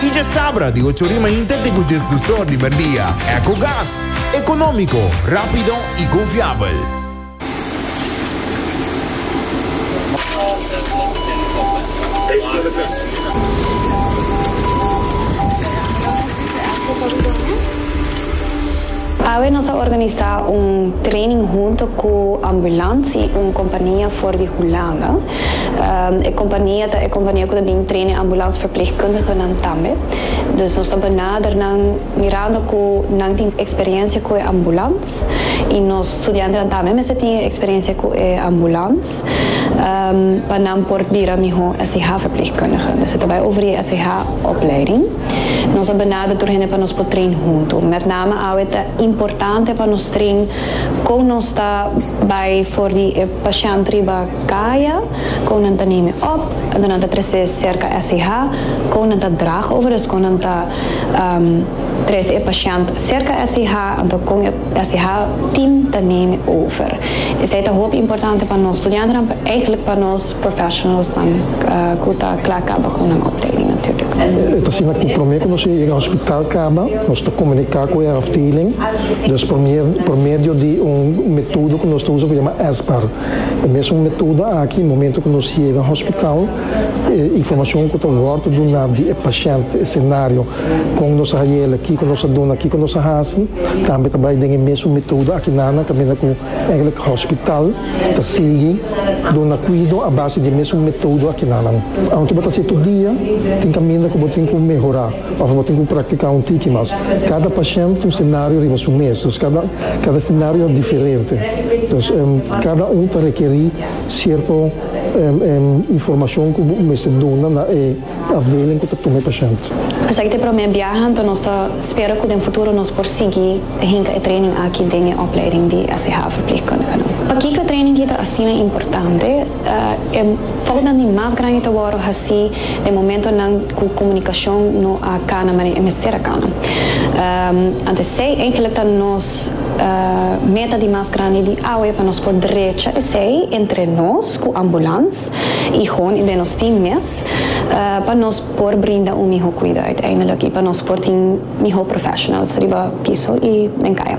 Y dje sabra di ocho ori mainta te cu dje sdusor di merdia. Ecogas. Economico, rapido y confiabel. Awe nos a organisa un training hunto cu Ambulance, un compania for di Hulanda. E kompania ta e kompania ku ta bin trena e ambulansverpleegkundigenan tambe. Dus nos ta benader nan mirando ku nan tin eksperensia ku e ambulans i nos studiantenan tambe mester tin e eksperensia ku e ambulans pa nan por bira mihó SIH-verpleegkundige. Dus e ta bai over e SIH-opleiding. Nos a benader tur hende pa nos por train huntu. Mètname awe ta importante pa nos train kon nos ta bai for di e pashènt riba. Kaya, kou nan ta name op, ento nan ta trese serka SCH, kou nan ta drag over es kou nan ta trese e pashènt serka SCH, ento kon e SCH team ta name over. Esei ta hopi importante pa nos studiantenan, pa eigenlik pa nos professionalsnan ku ta kla kaba kon nan opleiding natuurlijk. E ta asina ku promé ku nos yega hospital kaba, nos ta komuniká ku e afdeling, dus por medio di un metodo ku nos ta usa ku yama SBAR. E mesun metoda aki, momento ku nos yega hospital, e informashon ku ta wòrdu duná di e pashènt, e senario, kon nos a haiela, kiko nos a duna, kiko nos a hasi, tambe ta bai den e mesun metoda aki nana, kaminda ku ègèlek hospital ta sigui duna kuido a base di e mesun metodo aki nanan. Aunke bo ta setu dia, tin kaminda ku bo tin ku mehorá. Ora bo tin ku praktiká un tiki mas, kada pashènt ta un senario riba su mes, dus kada kada senario ta diferente. Dus kada un ta rekerí sierto informashon ku bo mester duna na e afdeling ku ta tuma e pashènt. Esaki ta e promé biaha, anto nos ta spera ku den futuro nos por sigui ta hinka e training aki den e opleiding di SCH Verpleegkundigen. Pakiko e training aki ta asina importante? E foutnan di mas grandi ta wòrdu hasí den momentonan ku komunikashon no a kana manera e mester a kana. Anto esei eigenlik ta nos meta di mas grandi di awe pa nos por drecha esei entre nos ku ambulans i hon i den nos team mes pa nos por brinda un mihó kuida uiteindelik i pa nos por tin mihó professionals riba piso i den kaya.